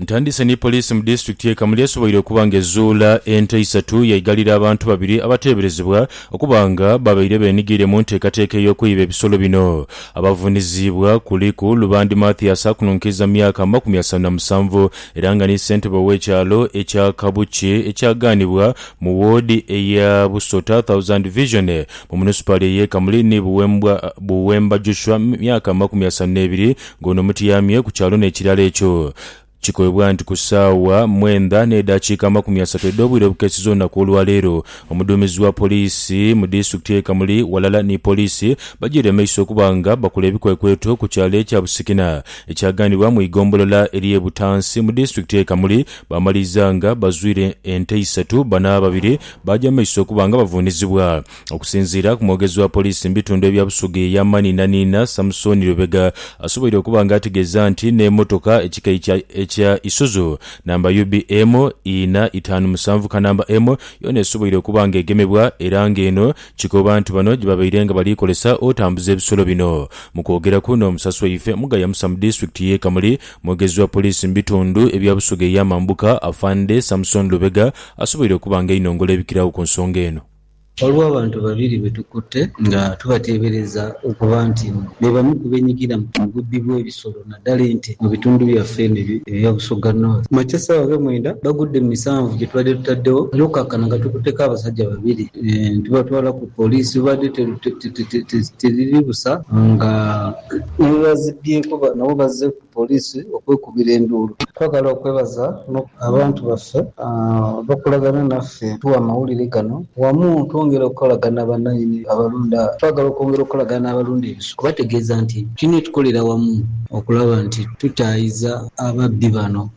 Ntandise ni poliisi mu disitulikiti ye Kamuli esoboire okuba nga ezuula ente isatu yaighalira abantu babiri abateeberezebwa okuba nga babaire benighaire mu nteekateeka ey'okwiba ebisolo bino. Abavuuniziibwa kuliku Lubandi Mathias akununkiiza mu myaka amakumi asanu na musanvu era nga ni ssentebe ow'ekyalo ekya Kabuki ekyagaanibwa mu woodi eya Busota Thousand Division mu munisipaali ey'e Kamuli ni Buwemba Joshua myaka amakumi asanu n'ebiri Ng'ono mutyamye ku kyalo n'ekirala ekyo. Kikoibwa nti ku saawa mwendha n'edhakiika amakumi asatu edh'obwire obukeesiza olunaku olwaleero, omuduumizi wa poliisi mu disitulikiti ye Kamuli ghalala ni poliisi bajeire maiso okuba nga bakola ebikwekweto ku kyalo ekya Busikina ekyaganibwa mu igombolola erye Butansi mu disitulikiti ye Kamuli baamaliiza nga bazwire ente isatu bano ababiri baaja mumaiso okuba nga bavunizibwa Okusinziira ku mwogezi wa poliisi mu bitundu ebya Busoga eya Maninaniina, Samson Lubega asoboire okuba nga ategeeza nti n'emotoka ekika ekya ekya Isuzu namba UBM ina itaanu musanvu kanamba M yoona esoboire okuba nga egemebwa era nga eno kikoba nti bano gyebabaire nga baliikozesa otambuza ebisolo bino. Mu kwogeraku n'omusasi waife mu Gayamusa mu disitulikiti ye Kamuli, mwogezi wa poliisi mu bitundu ebya Busoga ey'amambuka, Afande Samson Lubega asoboire okuba nga ainongola ebikiragho ku nsonga eno. Ghaligho abantu babiri be tukutte nga tubateebereza okuba nti be bamu ku beenyigira mu bubbi bw'ebisolo naddala ente mu bitundu byaffe eno ebya Busoga North. Mu makya essaawa nga mwenda gagudde mu misanvu gye tubadde tutaddewo era okukakkana nga tukutteko abasajja babiri ne tubatwala ku poliisi we baadde teriri busa nga ne bwe bazibbyeeko nabo bazze Poliisi okwekubira enduulu. Twagala okwebaza no. Abantu baffe abakolagana naffe otuwa amawulire gano wamu twongera okukolagana na bannaine abalunda. Twagala okwongera okukolagana n'abalunda ebisolo. Kubategeeza nti tulina okukolera wamu okulaba nti tutaayiza ababbi bano.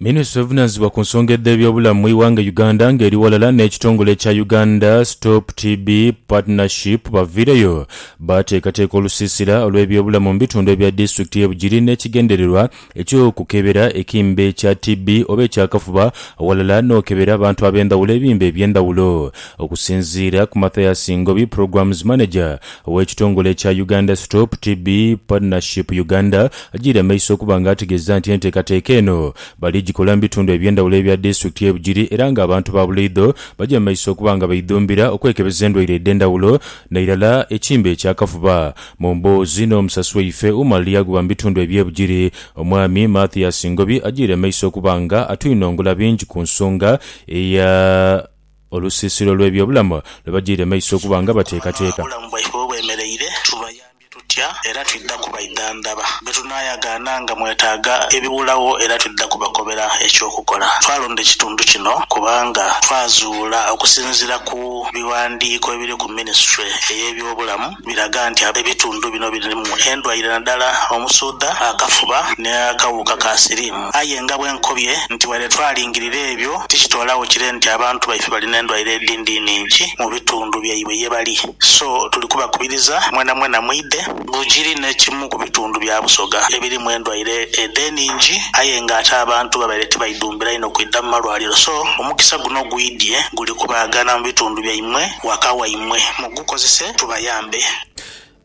Minisitule evunaanyizibwa ku nsonga edh'ebyobulamu mu ighanga Uganda nga eri ghalala n'ekitongole ekya Uganda Stop TB Partnership baviireyo baateekateeka olusiisira olw'ebyobulamu mu bitundu ebya disitulikiti y'e Bugiri n'ekigendererwa eky'okukebera ekimbe kya TB oba eky'akafuba ghalala n'okebera abantu ab'endhawulo ebimbe eby'endhawulo. Okusinziira ku Mathias Ngobi, Programs Manager Ow'ekitongole ekya Uganda Stop TB Partnership Uganda ajiire maiso okuba nga ategeeza nti enteekateeka eno bali jikola mu bitundu eby'endhawulo ebya disitulikiti ye Bugiri era nga abantu ba buleidho baja maiso okuba nga baidhumbira okwekebeza endwaire edh'endhawulo nairala ekimbe eky'akafuba. Mu mboozi n'omusasi waife Umar Lyaguba mu bitundu ebye Bugiri, Omwami Mathias Ngobi ajiire maiso okuba nga atwinongula bingi ku nsonga eya. Olusiisira olw'ebyobulamu lwe bagyaire maiso okuba nga bateekateeka. Obulamu bwaibwe we bwemereire, tubayambye tutya era twidha kubaidhandhaba. Be tunaayagaana nga mwetaaga ebiwulagho era twidha kubakobera eky'okukola. Twalonda ekitundu kino kubanga twazuula okusinziira ku bighandiiko ebiri ku minisitule ey'ebyobulamu, biraga nti ab'ebitundu bino birimu endwaire nadala omusuudha, akafuba n'akawuka ka siriimu. Aye nga bwenkobye nti waire twalingirira ebyo, tikitoolagho kire nti abantu baife bali n'endwaire edindi nhingi mu bitundu byaibwe ye bali. So tuli kubakubiriza mwenamwena mwidhe. Bugiri n'ekimu ku bitundu bya Busoga ebirimu endwaire edho enhingi aye nga ate abantu babaire tibaidhumbira inho kwidha mu malwaliro so omukisa guno ogwidhie guli kubaagana mu bitundu byaimwe waka waimwe mu. mukozese tubayambe.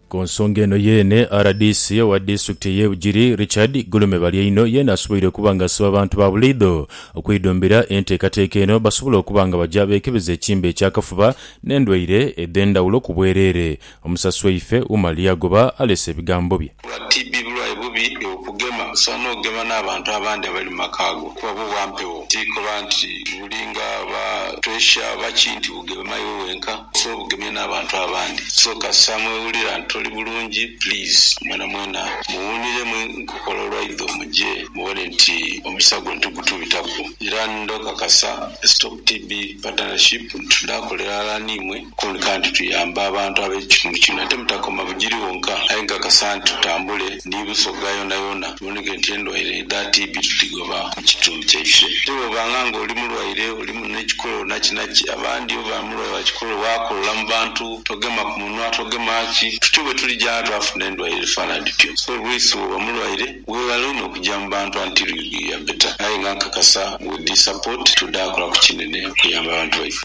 Ku nsonga eno yeene, rdc owa disitulikiti ey'e Bugiri, Richard Gulume Balyaino yeene asoboire okuba nga asiba abantu ba bulaidho okwidhumbira enteekateeka eno basobole okuba nga baja beekebeza ekimbe eky'akafuba n'endwaire edh'endhawulo ku bwereere. Omusasi waife Umar Lyagoba aleese ebigambo bye. Kuba TB bulwaire bubi eokugema, osobola n'okugema n'abantu abandi abali mu maka go kuba bwo bwa mpewo. Ti koba nti buli nga ba puresha oba ki nti bugema iwe wenka, osobola obugemya n'abantu abandi. So kasita mwewulira nti toli bulungi please mwenamwena muwuuniremu enkokola olwaidho muje mubone nti omukisa gwo nti gutubitaku. Era ndhokakasa Stop TB Partnership nti tudha kolera ghala n'imwe. Kwoleka nti tuyamba abantu ab'ekitundu kino. Ate mutakoma Bugiri wonka, aye nkakasa nti tutambule ni Busoga yonayona tuboneke nti endwaire edha TB tudhigoba mu kitundu kyaife. Ate bw'obanga nga oli mulwaire, oli mune kikolo nakinaki, abandi oba mulwaire wa kikolo waakolola mu bantu, togema ku munwa, togema ki, tutyo bwe tuli gya twafuna endwaire edhifaanana dhityo. So Lwisi bw'oba mulwaire, weeghale inho okugya mu bantu until you be better. Aye nga nkakasa with this support, tudha kola ku kinene okuyamba abantu baife.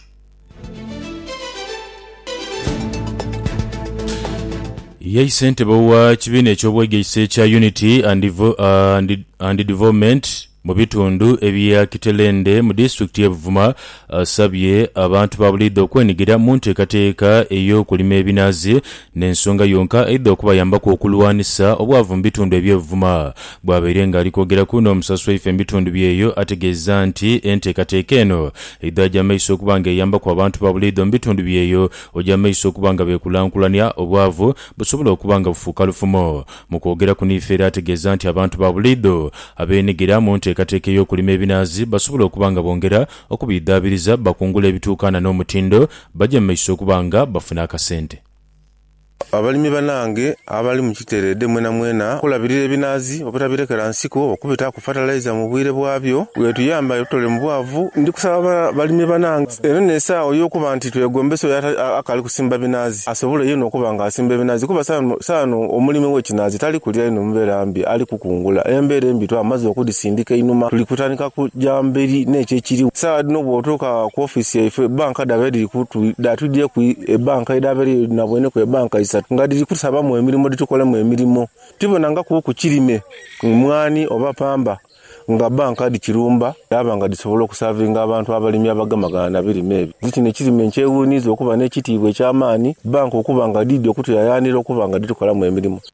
Ye ssentebe wa kibiina eky'obwegaise ekya Unity and Development mu bitundu ebya Kitelende mu disitulikiti ye Buvuma asabye abantu ba buliidho okwenigira mu nteekateeka ey'okulima ebinaazi n'ensonga yonka eidha okubayambaku okulwanisa obwavu mu bitundu ebye Buvuma. Bwabaire nga ali kwogeraku n'omusasi waife mu bitundu byeyo ategeeza nti enteekateeka eno Eidho aja maiso okuba nga eyambaku abantu ba buliidho mu bitundu byeyo oja maiso okuba nga bekulankulania, obwavu busobola okuba nga bufuuka lufumo. Mu kwogera kuno ife era ategeeza nti abantu ba buliidho abeenhigira mu nteekateeka ey'okulima ebinaazi basobola okuba nga bongera okubidhaabiriza, bakungula ebituukaana n'omutindo, baja mumaiso okuba nga bafuna akasente. Abalimi banange abali mu kitereedhe mwenamwena okulabirira ebinaazi obutabirekera nsiko okubitaaku fatalaiza mu bwire bwabyo bwetuyamba etutole mu bwavu. Ndi kusaba balimi banange eno n'esaagho y'okuba nti twegombesa oyo akaali kusimba binaazi asobole yeena okuba nga asimba ebinaazi kuba saano omulimi w'ekinaazi tali kulira inho mbeera mbi ali kukungula. Embeera embi twamaze okudhisindika einhuma tuli kutandika kugya mberi n'ekyo ekiriwo. Saagha dhino bw'otuuka ku ofiisi yaife, Bank. banka dhaba edhiri dhatwidhieku ebanka edhaba eriyo nabweneku ebanka isatu nga dhiri kutusabamu emirimo dhitukolemu emirimo tibonangakuku kirime mwanhi oba pamba nga banka dhikirumba dhaba nga dhisobola okusavinga abantu abalimi abagemagana nabirime ebyo. Nze kino ekirime nkyewuniza okuba nekitiibwa ekyamaani banka okuba nga dhidhi okutuyayanhira okuba nga dhitukolamu emirimo.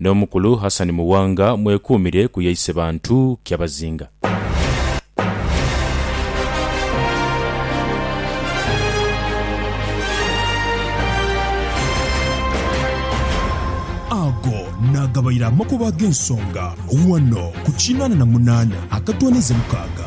N'omukulu Hassan Muwanga mwekuumire ku yaise bantu kyabazinga. Ago naagabaire amakubo ag'ensonga ghano ku kinaana na munaana akatwaniza mukaaga.